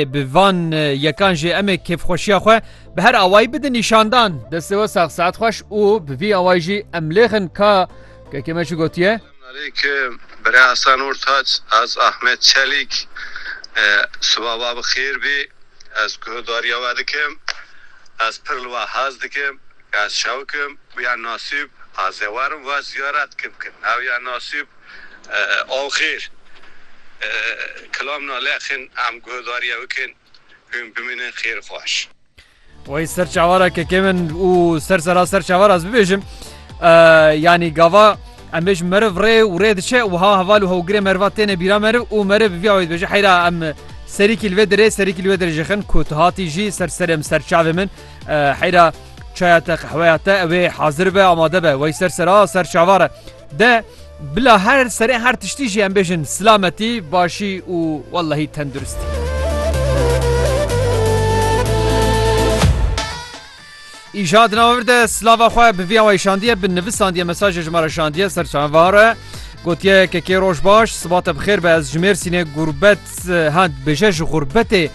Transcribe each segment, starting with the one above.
Bi van yekan jî em ê kêfxweşiya xwe bi her awayî bidin nîşandan. Destê we sax saet xweş û bi vî awayî jî em lêxin ka kekê me çi gotiye. Selamünaleyküm Birê Hasan Ortaç ez Ahmet Çelîk siba we bi xêr bî ez guhdarîya we dikim ez pir li we hez dikim ez şewik im ya nasîb ez ê werim we ziyaret kim kin ew ya nasîb Axir kilam na lexin em guhdarîya bikin hûn bimînin xêr xweş. Wey ser çavara kekê min û ser sera ser çavara ez bibêjim yanî gava em bêjim meriv rê û rê diçe û ha heval û hewgirê meriva têne bîra meriv û meriv bi vîya wê dibêje heyra em serîkî li vê dirê serîkî li wê dirê jixin ku tu hatî jî ser serê min ser çavê min heyra çaya te qehweya te ew ê hazir be amade be wey ser sera ser çavara De bila her serê her tiştî jî em bêjin silametî, başî û wellehî tenduristî. Îja di navir de silava xwe bi viya wê şandiye bi nivisandiye mesajê ji me re şandiye ser çavare. Gotiye kekê roj baş sibate bi xêr be ez ji mêrsînê gurbet ha bêje ji gurbetê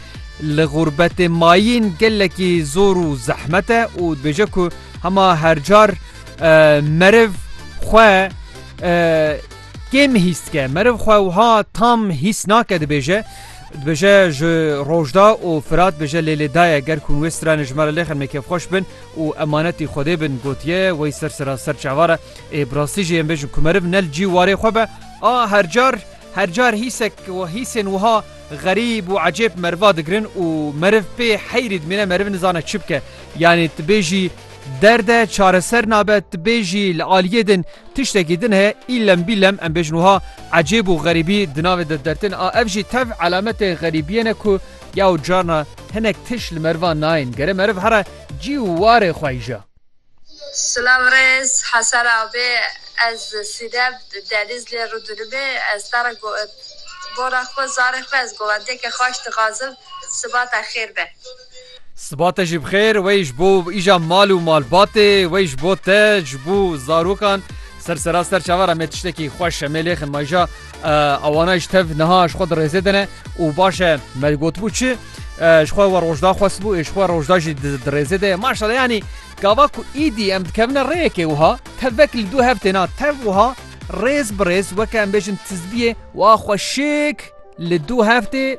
li gurbetê mayîn gelekî zor û zehmete û dibêje ku hema hercar meriv xwe kêm hîs dike meriv xwe wiha tam hîs nake dibêje dibêje ji rojda û firat bêje lêlê daye ger kun wê stranê ji me re lêxin me kêfxweş bin û emanetî xwedê bin gotiye wey ser sera ser çavara ê birastî jê em bêjin ku meriv nel cî warê xwe be a hercar hercar hîsek û hîsên wiha غريب û ecêb meriva digirin û meriv pê heyrî dimîne meriv nizane çi bike yanî tu bêjî Derd e çareser nabe tu bê jî li aliyê din tiştekî din heye îlem bîlem em bêjin wiha ecêb û xerîbî di navê de dertin a ev jî tev elemetê xerîbiyê ne ku yaw carna hinek tişt li merivan nayên gerê meriv here cî û warê xwe îja. Silav rêz Hasan Abi ez Sinem Denizlê Rûdinimê ez te re go bona xwe zarê xwe ez govendiyeke xaş dixazim sibata xêr be. Siba te jî bixêr wey ji bo îja mal û malbatê wey ji bo te ji bo zarokan ser sera ser çaver em ê tiştekî xweş em ê lêxin maja awana ji tev niha ji xwe dirêzê dine û baş e me gotibû çi ji xwe we rojda xwestbû ê ji xwe rojda jî dirêzê de maşala yanî gava ku îdî em dikevine rêyekê wiha tevek li dû hev têna tev wiha rêz bi rêz weke em bêjin tizbiyê wa xweşik li dû heftê